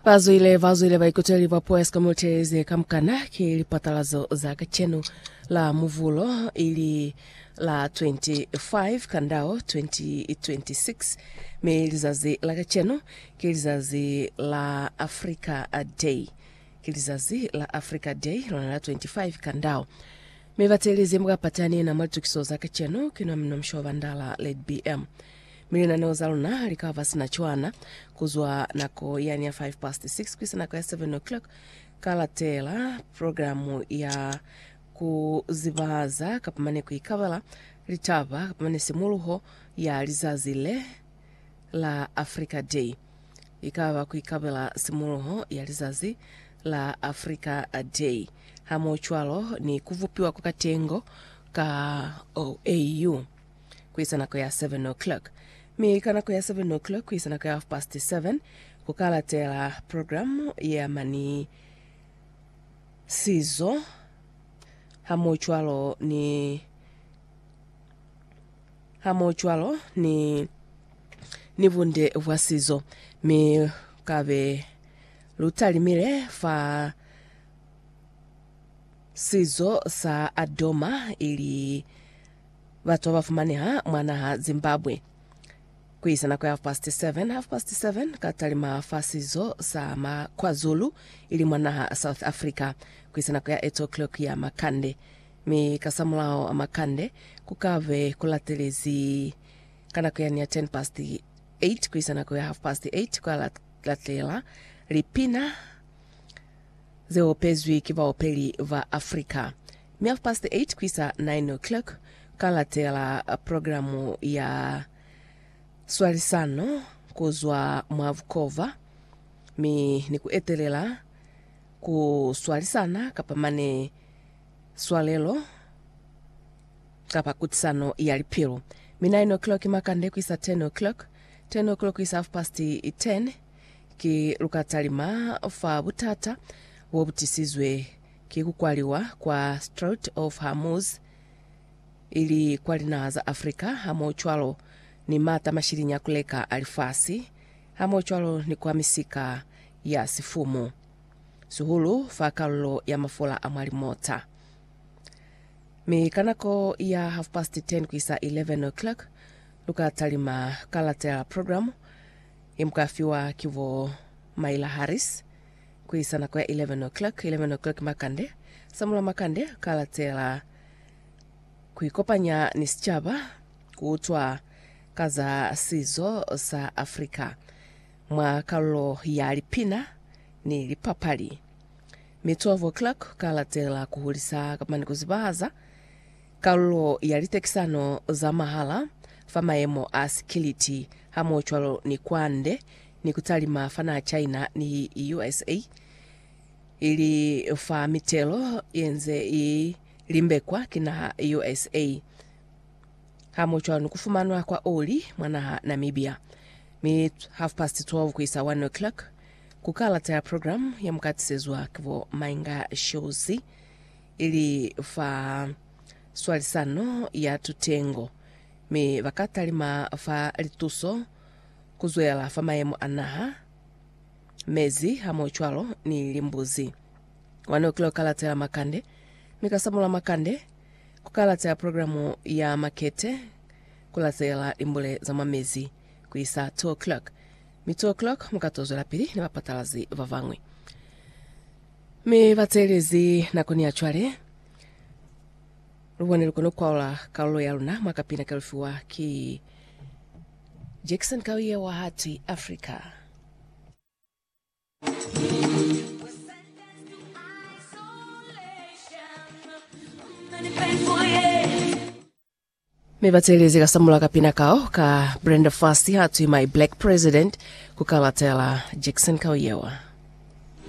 bazwile bazwile baikuteli ba puo ya sikamutezi kamukana ke lipatalazo za kacenu la muvulo ili la 25 kandao 2026 mi lizazi la kacenu ke lizazi la africa day ke lizazi la africa day lona la 25 kandao mi batelizi mukapatani na mwalitukiso za kacenu kina mno mshoba ndala led bm Mi linaneo za luna li ka ba sina cwana ku zwa nako yani ya 5 past 6 ku isa nako ya 7 o'clock. Ka latela programu ya ku zibahaza kapa mane ku ikabela litaba kapa mane simuluho ya lizazi le la Africa Day. I ka ba ku ikabela simuluho ya lizazi la Africa Day hamoho cwalo ni ku vupiwa kwa katengo ka OAU. kuisa nako ya 7 o'clock, mi ka nako ya 7 o'clock kuisa nako ya half past 7 ku ka latela programu ya mani sizo hamohocwalo ni hamohocwalo ni ni bunde bwa sizo, mi ka be lu talimile fa sizo sa Adoma ili Batu babafumaneha mwa naha Zimbabwe. Kuisa nako ya half past seven, half past seven, ka talima fa sizo sa ma KwaZulu, ili mwa naha South Africa, kuisa nako ya eight o'clock ya makande. Mi kasamulaho a makande, kukabe kulatelezi ka nako yani ya ten past eight kuisa nako ya half past eight, kwa latela lipina ze opezwi ki baopeli ba Afrika. Mi half past eight ku isa nine o'clock ka latela programu ya swalisano ku zwa mwa bukova mi ni ku etelela ku swalisana kapa mane swalelo kapa kutisano ya lipilo. Mi nine o'clock makande ku isa ten o'clock, ten o'clock ku isa half past ten. Ki lukatalima fa butata bo bu tisizwe ki ku kwaliwa kwa Strait of Hormuz, ili kwa linaha za Africa hamohocwalo ni mata mashiliñi a ku leka a lifasi, hamohocwalo ni kwa misika ya sifumu, sihulu fa kalulo ya mafola a mwa limota. Mi ka nako ya half past ten ku isa 11 o'clock, lukatalima ka latela programu, Ye mu ka fiwa ki bo Myla Harris ku isa nako ya 11 o'clock. 11 o'clock makande, Samula Makande ka latela ku ikopanya ni sicaba ku utwa ka za sizo sa Africa mwa kalulo ya lipina ni lipapali. Mi 12 o'clock ka latela ku hulisa kamba ni ku zibahaza Kalulo ya litekisano za mahala fa mayemo a sikiliti hamohocwalo ni kwande ni kutalima fa naha China ni USA ili fa mitelo yenze i limbekwa ki naha USA hamohocwalo ni kufumanwa kwa oli mwa naha Namibia. Mi half past 12 kuisa 1 o'clock ku kalata ya program ya mukatisezwa ki bo Mainga Shozi. ili fa swalisano ya tutengo, mi ba ka talima fa lituso ku zwela fa mayemo a naha, mezi hamohocwalo ni limbuzi. Mwa ne u kile ku ka latela makande, mi ka samulula makande, ku ka latela programu ya makete, ku latela limbule za mwa mezi ku isa two o'clock, mi two o'clock mu ka to zwelapili ni bapatalazi ba bañwi. Mi bateelezi nakoni ya cwale, lubone lukona kukwaula kalulo yaluna mwa kapina kalufiwa ki Jackson Kawiye wa Heart Africa. Mi bateelezi ka samula kapina kao ka Brenda Fassie atwi My Black President ku kalatela Jackson Kawiyewa.